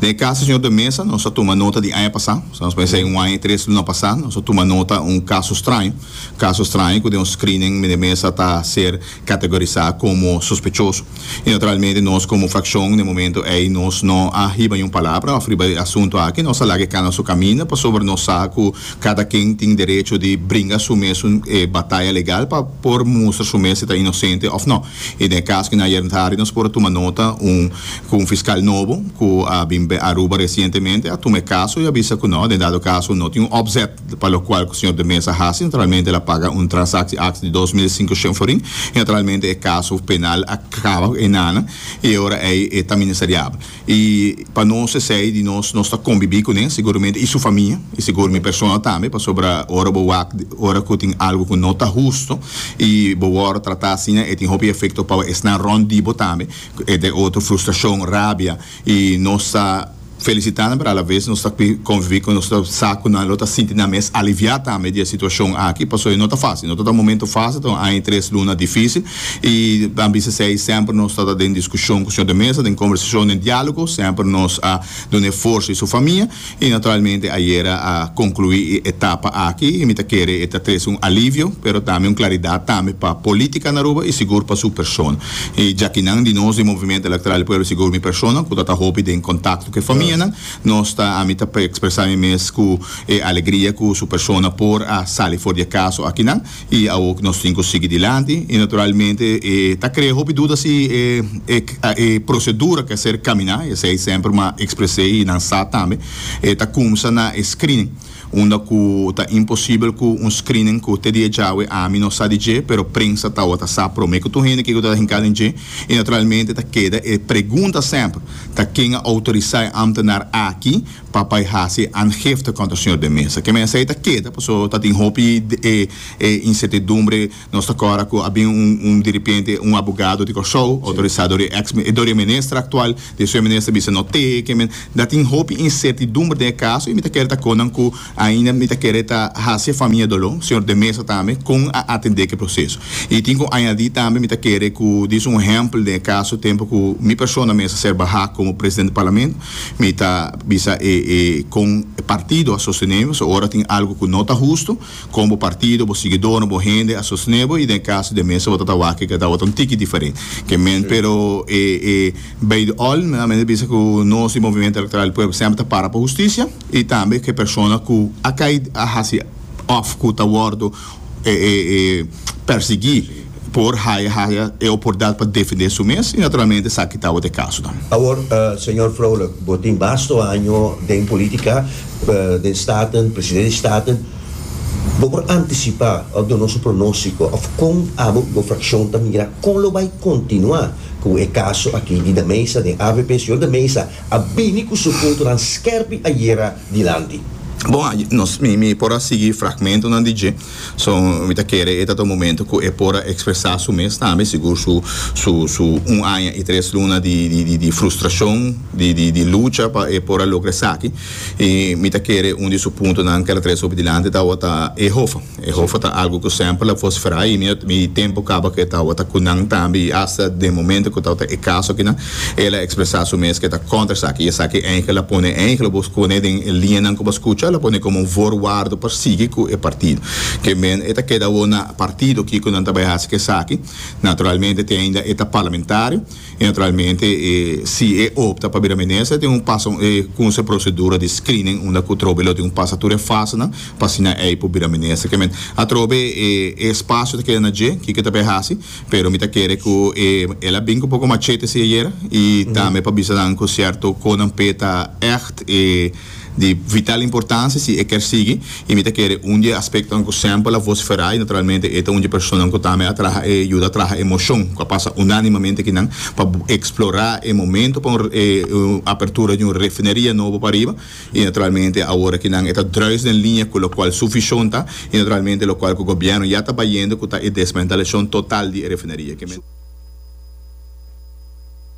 Den e kas di señor de Meza nos a tuma nota di aña pasá, sa nos por esei un aña i tres luna pasá, nos a tuma nota un kaso straño, kaso straño ku den un screening meneer Meza ta ser kategorisá komo sospechoso. I naturalmente nos komo frakshon den e momento ei nos no a hiba ni un palabra òf riba e asuntu aki, nos a laga e kanda su kaminda pasobra nos sa ku kada ken tin derecho di bringa su mes un bataya legal pa por mustra su mes si ta inosente òf no. I den e kas ku ayer ntari nos por a tuma nota un ku un fiskal nobo ku a bin be Aruba resientemente a tuma e kaso i a bisa ku no, den dado kaso no tin un opzet pa lokual ku señor de Meza a hasi, naturalmente el a paga un transaksi aks di dos mil sinku shen florin i naturalmente e kaso penal a kaba ku e nana i e ora ei e ta ministeriabel. I pa nos esei di nos nos ta kombibí ku nan seguramente i su famia i sigur mi persona tambe pasobra ora bo wak ora ku tin algu ku no ta hustu i bo wòrdu tratá asina e tin hopi efekto pa esnan rònt di bo tambe entre otro frustrashon rabia i nos ta felisitá nan pero alaves nos ta konvibí ku nan nos ta sa ku nan lo ta sinti nan mes aliviá tambe di e situashon aki pasobra no ta fásil no ta ta momentu fásil ta un aña i tres luna difísil I a bisa esei, semper nos ta den diskushon ku señor de mesa, den kombersashon, den diálogo, semper nos a duna e forsa i su famia, i naturalmente ayera a konkluí e etapa aki, i mi ta kere e ta trese un alivio, pero tambe un klaridat tambe pa polítika na Aruba i sigur pa su persona. I djakinan di nos di Movimiento Electoral di Pueblo, sigur mi persona ku ta ta hopi den kontakto ku e famianan, nos ta ami ta ekspresá mi mes ku e alegria ku su persona por a sali for di e kaso akinan. I awo ku nos tin ku sigui dilanti i naturalmente e ta krea hopi duda si e e prosedura ke ser kaminá, esei semper ma ekspresei i nan sa tambe, e ta kumsa na e screening, unda ku ta imposibel ku un screening ku te dia djawe ami no sa di dje, pero prensa tabata sa promé ku tur hende kiko ta hinkado den dje i naturalmente ta keda e pregunta semper ta ken a outorisá e ámtenar aki? Papa i hasi angifte kontra señor den mesa. Ke mesa ei ta keda paso ta tin hopi insertidumbre. Nos ta kòrda ku a bin un diripiente, un abogado di Kòrsou outorisá dor e eks dor e minister aktual. Di su e minister bisa no te ke men. Ta tin hopi insertidumbre den e kaso i mi ta kere ta kon nan ku ainda mi ta kere ta hasi e famia doló, señor den mesa tambe kon a atendé ke proseso. I tin ku añadí tambe mi ta kere ku disa un ehèmpel den e kaso tempu ku mi persona mester ser bahá komo presidente di parlamento. Mi ta bisa e e kon e partido a sostenebo, so ora tin algo ku no ta hustu, kon bo partido, bo siguidornan, bo hende a sostenebo i den e kaso di e mester bo ta ta wak ke tabata un tiki diferent ke men. Pero e e bay di all mi ta bisa ku nos di Movimiento Electoral di Pueblo semper ta para pa hustisia i tambe ke persona ku a kai a hasi òf ku ta wòrdu eh, eh, eh, persiguí por haya, haya e oportunidad pa defendé su mes y naturalmente sa ki tabatin e caso nan. Awor, eh, señor Vrolijk, bo tin basto año den politica, eh, den Staten, presidente di Staten, bo por anticipá of duna nos un pronóstico of con abo bo fraccion ta mira con lo bay continuá cu e caso aki di De Meza den avp? Señor De Meza a bini cu su puntonan skerpi ayera dilanti. Bon, nos, mi, mi por a sigui fragmentonan di dje, so mi ta kere e tabata un momento ku e por a ekspresá su mes tambe, sigur su, su, su un aña i tres luna di, di, di, di frustrashon, di, di, di lucha pa e por a logra esaki. I mi ta kere un di su puntonan kèr a trese hopi dilanti tabata Ehofa. E hofa ta algu ku semper la fos fera i mi tempu kaba ku e tabata ku nan tambe i asta den momento ku tabata e kaso akinan el a ekspresá su mes ku e ta kontra esaki i esaki Angel a pone Angel bo skone den e liñanan ku bo a skucha el a pone komo un voorwaarde pa sigui ku e partido ke men e ta keda awor na partido kiko nan ta bai hasi esaki naturalmente te ainda e ta parlamentario. Y naturalmente e si e opta pa bira minister tin un pasa e kunse procedura di screening unda ku trobe lo tin un pasa tur e fasenan pa asina ey por bira minister ke men atrobe e e espacio ta keda na dje kiko ta bay hasi pero mi ta kere ku e el a bin ku un poko machete si ayera y tambe pa bisa nan ku cierto konan pe ta echt e Di vital importancia si e kier sigui y mi ta kere un di e aspectonan cu semper la vocifera y naturalmente e ta un di e personanan cu tambe a traha e yuda traha e mocion cu a pasa unanimamente aki nan pa explora e momento pa un apertura di un refineria nobo pariba y naturalmente awor aki nan e ta druis den linea cu locual su vision ta y naturalmente locual cu gobierno ya ta bayendo cu ta e desmantelacion total di e refineria.